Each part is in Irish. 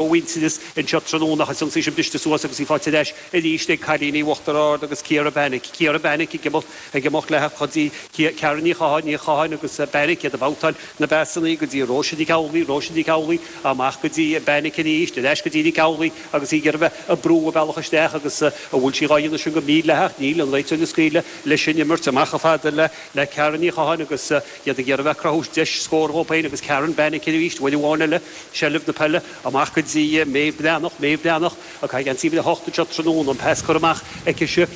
mhuintearas anseo tráthnóna ach is ionsaí sin briste suas agus í faighte ar ais arís ag cailíní Uachtar Ard agus Ciara Beinic. Ciara Beinic ag imeacht, ag imeacht leithe go dtí Ciara Ní Chatháin, Ní Chatháin agus Beinic, iad ag babhtáil na bpasanna go dtí Róise Nic Amhlaoidh, Róise Nic Amhlaoidh, amach go dtí Beinic arís, ar ais go dtí Nic Amhlaoidh agus í ag iarraidh bheith ag brú a bealach isteach agus an bhfuil sí dhá dhéanamh sin go mídhleathach? Níl, an réiteoir ag scaoileadh leis an imirt, amach chomh fada le Ciara Ní Chatháin agus. iad ag iarraidh a bheith ag cruthú deis scór dhóibh féin agus Karen, bean aici arís, uair amháin eile, seilbh na peile, amach go dtí Méabh Breathnach, Méabh Breathnach ag caitheamh uimhir a hocht anseo tráthnóna, an pas curtha amach aici-se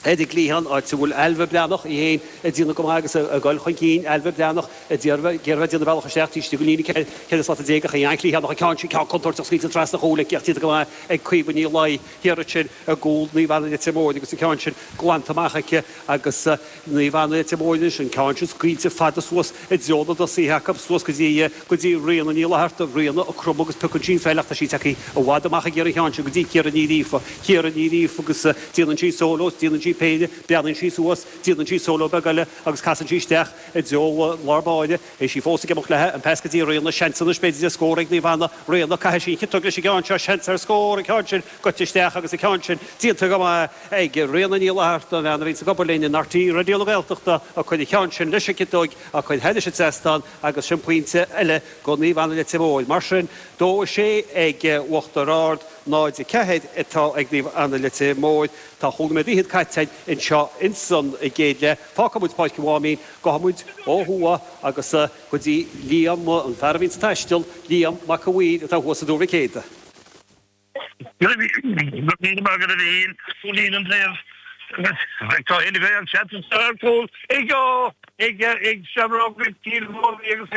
ar an gcliathán, áit a bhfuil Ailbhe Breathnach í féin ag déanamh go maith agus ag goil chun cinn, Ailbhe Breathnach ag déanamh, ag iarraidh a bheith ag déanamh a bealach isteach taobh istigh den líne ceithre, ceithre slata déag ach í an-chliathánach, an ceann sin, ceann contúirteach scaoilte trasna an chúil aici ach déanta go maith ag Caoimhe Ní Laighin, thiar ansin i gcúl Naomh Anna Leitir Móir agus an ceann sin glanta amach aici agus. Naomh Anna Leitir Móir anois, an ceann sin scaoilte fada suas i dtreo na dtosaithe acu, suas go dtí, go dtí Ríona Ní Fhlatharta, Ríona ag cromadh agus piocann sí an pheil ach tá sí tagtha i bhfad amach ag iarraidh an cheann sin go dtí Ciara Ní Ghríofa, Ciara Ní Ghríofa agus déanann sí solo, déanann sí péire, breathnaíonn sí suas, déanann sí solo beag eile agus casann sí isteach i dtreo lár báire, agus í fós ag imeacht leithe, an pas go dtí Ríona, seans anois b'fhéidir do scór ag Naomh Anna, Ríona, caithfidh sí an chiotóg leis an gceann seo, seans ar scór, an ceann sin goite isteach agus an ceann sin déanta go maith, ag Ríona Ní Fhlatharta, an bhean a bhíonn ag obair linn in RTÉ Raidió na Gaeltachta, a chuir an ceann sin leis an gciotóig, a chuir thairis an trasnán, agus sin pointe eile do Naomh Anna Leitir Móir. Mar sin, dó a sé ag Uachtar Ard, náid a ceathair atá ag Naomh Anna Leitir Móir. Tá chúig nóiméad fhichead caite anseo ins an gcéad leath. Fágfaidh muid Páirc an Mháimín, gabhfaidh muid ó thuaidh agus go dtí Liam, an fear a bhíonn sa taisteal, Liam Mac an Mhaoir, atá thuas i dTuar Mhic Éadaigh. Nílim ag iarraidh a shíl go bhfuil an taobh eile den seans ar chúl ag Seamróga Chill Mobhí agus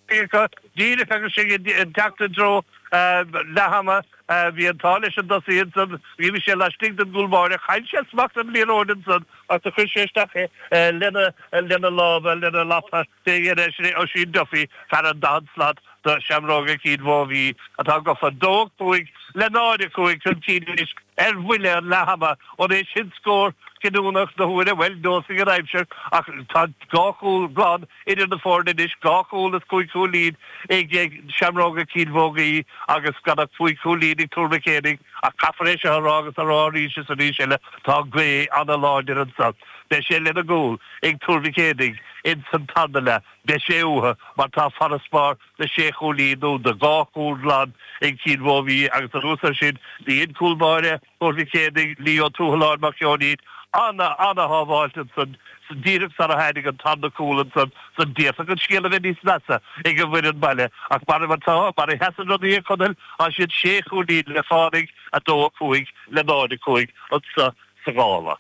é acu díreach agus sinn ag teacht i dtreo leath ama. Bhí an t-ádh leis an dtosaí ansan, bhí sé laistigh den gcúl báire, chaill sé smacht ar an liathróid ansan agus chuir sé isteach é lena lámha, lena lapa. D'éag ar dheis é Oisín Duffy, fear an daichead slat do Seamróga Chill Mobhí, atá gofa, 2-5 le 0-5 chun cinn anois ar bhuille an leath ama. An é sin scór cinniúnach na huaire? Bhuel, neosfaidh an aimsir ach tá dhá chúl glan idir na foirne anois, dhá chúl is cúig chúilín ag Seamróga Chill Mobhí agus gan ach cúig chúilín ag Tuar Mhic Éadaigh. Ach caithfear é seo a rá agus a rá arís is arís eile, tá gaoth an-láidir anseo. Beidh sé lena gcúl ag Tuar Mhic Éadaigh ins an tarna leath, beidh sé uathu mar tá farasbarr de sé chúilín nó de dhá chúl glan ag Cill Mhóibhí agus anuas ar sin dhein cúl báire Thuar Mhic Éadaigh, Leo Tuathaláin Mac Sheoinín, ana, ana-shábháilt ansan san díreach sara tháinig an tarna cúl ansan san d'fhéadfadh an scéal a bheith níos measa ag an bhfoireann baile ach mar atá, mar a sheasann rudaí a Chonaill, tá siad sé chúilín le fánaidh, 2, 5, le 0, 5, anso sa ghála.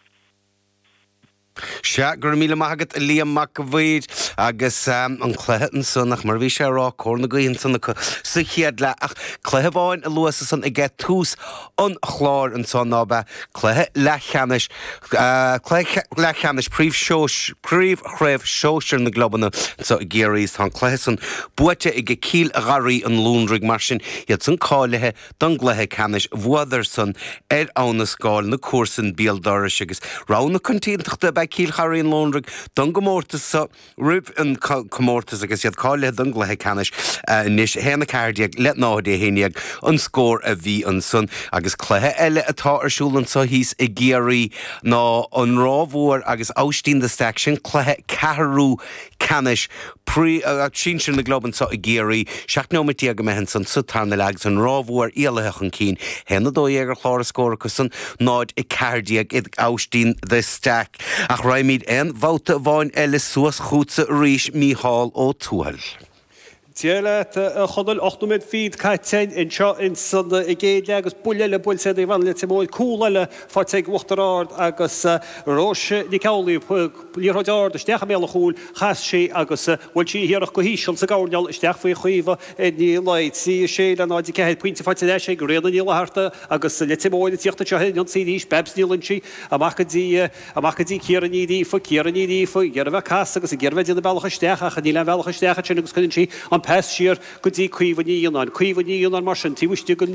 Sea, go raibh míle maith agat, a Liam Mac an Mhaoir, agus an cluiche ansan, ach mar a bhí sé á rá, cóir na gaoithe ansan acu sa chéad leath, ach cluiche amháin a luas ansan ag tús an chláir ansan, ná b'é cluiche leathcheannais, cluiche leathcheannais príomh, príomhchraobh shóisir na gclubanna anso i gCiarraí, is tá an cluiche san buaite ag Cill Gharraí an Londraigh, mar sin, iad san cáilithe don gcluiche ceannais bhuadarsan ar Abha na Scáil na comharsain béal dorais agus rogha na coitiantachta ab ea Cill Gharraí an Londraigh don gcomórtas so roimh an comórtas agus iad cáilithe don gcluiche ceannais anois. 1, 14 le 0, 11 an scór a bhí ansan agus cluiche eile atá ar siúl anso thíos i gCiarraí ná an Ráth Mhór agus Aibhistín de Staic, sin cluiche ceathrú ceannais. Chraobh sinsir na gclub anso i gCiarraí, 17 nóimeat imithe ansan sa tarna leath agus an Ráth Mhór éalaithe chun cinn, 1-12 ar chlár na scór acusan, 0-14 ag Aibhistín de Staic. Ach raghaimid aon bhabhta amháin eile suas chughatsa arís, Mícheál Ó Tuathail. Dia leat, a Chonaill. Ocht nóiméad fichead caite anseo ins an gcéad leath agus buille eile buailte ar Naomh Anna Leitir Móir, cúl eile faighte ag Uachtar Ard agus Róise Nic Amhlaoibh, liathróid ard isteach i mbéal an chúil, chas sí agus bhuail sí a hiarracht go híseal sa gcoirnéal isteach faoi Chaoimhe Ní Laoi. 3-6 le 0-4, pointe faighte ar ais ag Ríona Ní Fhlatharta agus Leitir Móir ag tíocht anseo ar an ionsaí arís, Babs Ní Loingsigh amach go dtí amach go dtí Ciara Ní Ghríofa, Ciara Ní Ghríofa ag iarraidh a bheith ag casadh agus ag iarraidh a bheith ag déanamh bealach isteach ach níl aon bhealach isteach ansin agus cuireann sí an pas siar go dtí Caoimhe Ní Fhionnáin, Caoimhe Ní Fhionnáin mar sin taobh istigh den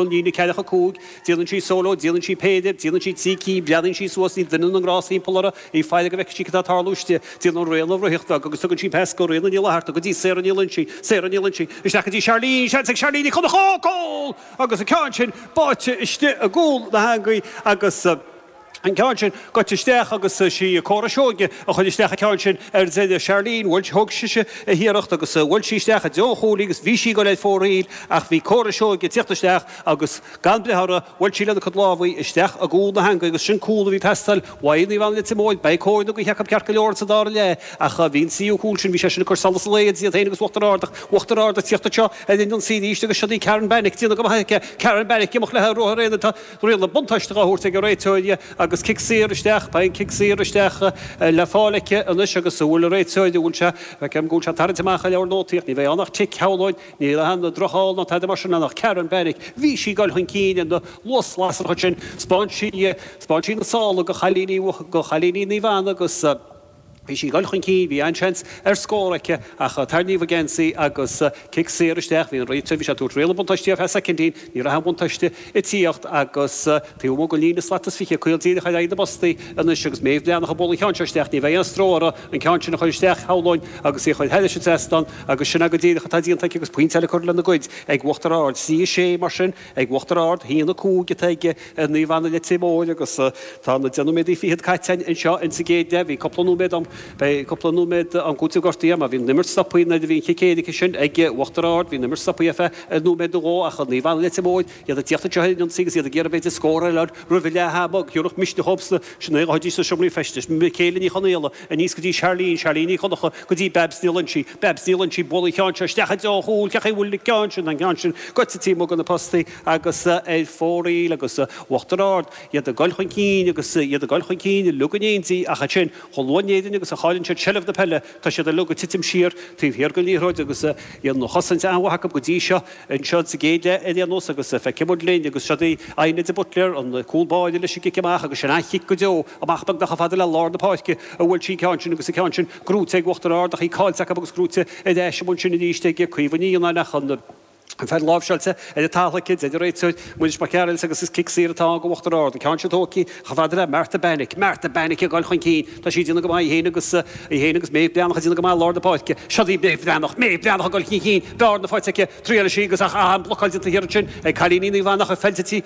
líne ceathracha a cúig, Déanann sí solo, déanann sí péire, déanann sí trí cinn, breathnaíonn sí suas, níl duine na ngrást thimpeall uirthi, í ag faire go bhfeice sí céard atá ag tarlú istigh, déanann Ríona ruathar beag agus tugann sí pas go Ríona Ní Fhlatharta, go dtí Sarah Ní Loingsigh, Sarah Ní Loingsigh, isteach go dtí Charlene, seans ag Charlene Ní Chonchúir, cúl! Agus an ceann sin báite istigh i gcúl na heangaí agus. an ceann sin, goite isteach agus sí Cora Seoige a chuir isteach an ceann sin ar deireadh. Charlene, bhuail, thug sise a hiarracht agus bhuail sí isteach i dtreo an chuaillí agus bhí sí ag dul ar fóraoil ach bhí Cora Seoige ag tíocht isteach agus gan breith uirthi, bhuail sí lena cuid lámha isteach i gcúl na heangaí agus sin cúl a bhí ag teastáil ó Naomh Anna Leitir Móir, beidh cóir na gaoithe acu ceart go leor ins an dara leath ach bhí an tríú cúl sin, bhí sé sin ag cur solas an lae idir iad féin agus Uachtar Ard ach Uachtar Ard ag tíocht anseo ar an ionsaí arís agus siod í Karen Bannick, déanta go maith aici, Karen Bannick, ag imeacht léi ar ruathar aonair, tá. Riail an bhuntáiste dhá thabhairt ag an réiteoir agus cic saor isteach. Tá cic saor isteach le fáil aici anois agus an bhfuil an réiteoir, an bhfuil sé, feicim go bhfuil sé tarraingt amach an leabhar nótaí ach ní bheidh ann ach cic, shamhlóinn. Níl a dhath, drochfheall ná tada mar sin ann ach Karen Bannick, bhí sí ag dul chun cinn ar luas lasrach ansin, 'speáin sí, 'speáin sí na sála go chailíní, go chailíní Naomh Anna agus. Bhí sí ag dul chun cinn, bhí an-seans ar scór aici ach tarraingíodh a geansaí agus cic saor isteach, bhí an réiteoir, bhí sé ag tabhairt riail an bhuntáiste ar feadh soicindín, ní raibh aon bhuntáiste ag tíocht agus taobh amuigh den líne slat is fiche, caol díreach ar aghaidh na bpostaí anois agus Méabh Breathnach ag bualadh an ceann seo isteach, ní bheidh aon stró orthu an ceann sin a chur isteach, shamhlóinn, agus í a chur thar an trasnán agus sin go díreach atá déanta aici agus pointe eile curtha lena gcuid ag Uachtar Ard. Trí a sé, mar sin. Ag Uachtar Ard, a haon a 5 atá ag Naomh Anna Leitir Móir agus tá na deich nóiméad fichead caite anseo insa gcéad leath. Bhí cúpla nóiméad ann, beidh cúpla nóiméad am cúitimh gortaithe ach bhí an imirt stoptha nuair a bhí an cic éirice sin ag Uachtar Ard. Bhí an imirt stoptha ar feadh nóiméad nó dhó ach Naomh Anna Leitir Móir, iad ag tíocht anseo ar an ionsaí agus iad ag iarraidh b'fhéidir scór a fháil roimh leath ama. Go gcuirfeadh sé misneach iontu sna seomraí feistis, Michaela Ní Chonaola, Aníos go dtí Charlene, Charlene Ní Dhonnacha, go dtí Babs Ní Loinsigh, Babs Ní Loinsigh, buaileann an ceann seo isteach i dtreo an chúil, cé chaoi a bhfuil an ceann sin, an ceann sin, gaibhte taobh amuigh de na postaí agus ar fóraoil agus Uachtar Ard, iad ag goil chun cinn agus iad ag goil chun cinn, uilig in éindí ach ansin, chomh luath in Éirinn agus a chailleann siad seilbh na peile, tá siad uilig ag titim siar taobh thiar den liathróid agus bhí an chosaint an-mhaith acu go dtí seo, anseo sa gcéad leath ar aon nós agus feicfidh muid linn agus siod í, Adhna de Buitléar, an cúlbáire leis an gcic amach agus sin an-chic go deo. Amach beagnach chomh fada le lár na páirce a bhuail sí an ceann sin agus an ceann sin gnóite ag Uachtar Ard ach í caillte acu agus gnóite ar ais amuigh ansin arís ag Caoimhe Ní Fhionnáin ach an pheil láimhseáilte ar an talamh aici, deir an réiteoir, Muiris Mac Gearailt agus is cic saor atá ann go Uachtar Ard. An ceann sin tógtha aici chomh fada le Martha Benik. Martha Benik ag dul chun cinn! Tá sí ag déanamh go maith í féin agus í féin agus Méabh Breathnach ag déanamh go maith i lár na páirce. Siod í Méabh Breathnach! Méabh Breathnach ag dul chun cinn, bearna faighte aici, triaileann sí agus ach an bhlocáil déanta thiar ansin ag cailíní Naomh Anna ach an fheadóg séid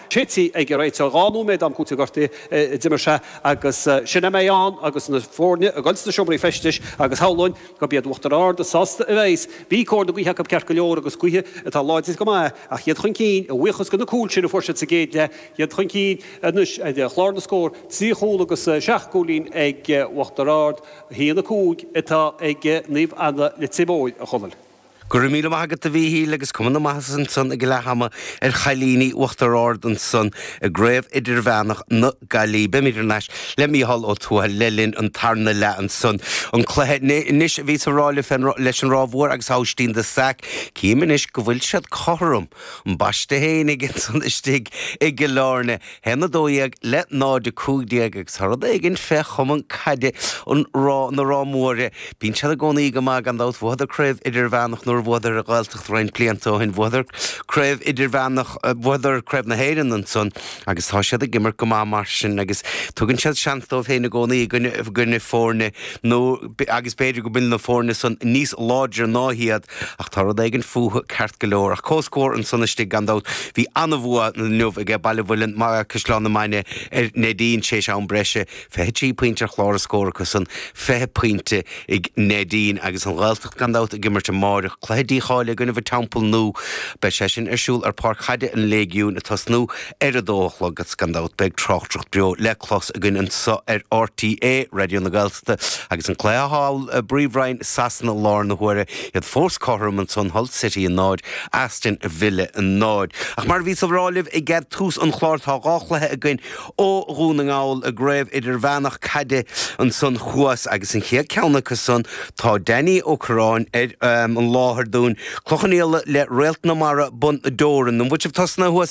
te ag an réiteoir, dhá nóiméad am cúitimh gortaithe a d'imir sé agus sin a mbeidh ann agus na foirne ag dul sna seomraí feistis agus shamhlóinn gurb iad Uachtar Ard is sásta a bheidh's, bhí cóir na gaoithe acu ceart go leor agus gaoth atá láidir go maith ach iad chun cinn, a bhuíochas do na cúil sin a fuair siad sa gcéad leath, iad chun cinn anois, clár na scór, trí chúl agus seacht gcúilín ag Uachtar Ard, 1-5 atá ag Naomh Anna Leitir Móir, a Chonaill. Go raibh míle maith agat, a Mhíchíl, agus cuma na maitheasa ansan ag leath ama ar chailíní Uachtar Ard ansan i gCraobh Idirmheánach na Gaillimhe. Beimid ar ais le Mícheál Ó Tuathail le linn an tarna leath ansan. An cluiche anois a bhíos ag fáil réidh leis an Ráth Mhór agus Aibhistín de Staic. Cím anois go bhfuil siad cothrom. An bháisteach fhéinig ansan istigh i gCill Áirne. haon a dó dhéag le náid a cúig déag agus tá rud éigin fé chumann caide na Rátha Móire, bíonn siad i gcónaí go maith gan dabht. Bhuadar craobh idirmheánach nuair a bhuadar an Ghaeltacht roinnt blianta ó shin, bhuadar craobh idirmheánach, bhuadar craobh na hÉireann ansan agus tá siad ag imirt go maith mar sin agus tugann siad seans dóibh féin i gcónaí i gcoinne foirne nó, agus b'fhéidir go bhfuil na foirne san níos láidre ná hiad. Ach tá rud éigin fúthu ceart go leor. Ach comhscór ansan istigh, gan dabht. Bhí an-bhua inniu aige Baile an Mhuilinn, Caisleán na Mainge ar Neidín tar éis an am breise. Fiche trí pointe ar chlár an scóir acu san. Fiche pointe ag Neidín. Agus an Ghaeltacht, gan dabht, ag imirt amáireach. Cluiche dícháilithe i gcoinnibh an Teampaill Nua. Beidh sé sin ar siúl ar pháirc chaide an Léigiúin, ag tosnú ar a dó a chlog. Agus gan dabht beidh tráchtaireacht beo le clos againn anso ar RTÉ Raidió na. Agus an cluiche thall i bPríomhroinn Sasana lár na huaire, iad fós cothrom ansan, Hull City a náid, Aston Villa a náid. Ach mar a bhíos ag rá libh ag tús an chláir, tá dhá chluiche againn ó Dhún na nGall i gCraobh Idirmheánach caide ansan thuas agus an chéad ceann acu san, tá Danny Ó Corráin ar an láthair dúinn, Cloich Cheann Fhaola le Réalt na Mara, Bun Dobhráin. An bhfuil sibh tosnaithe?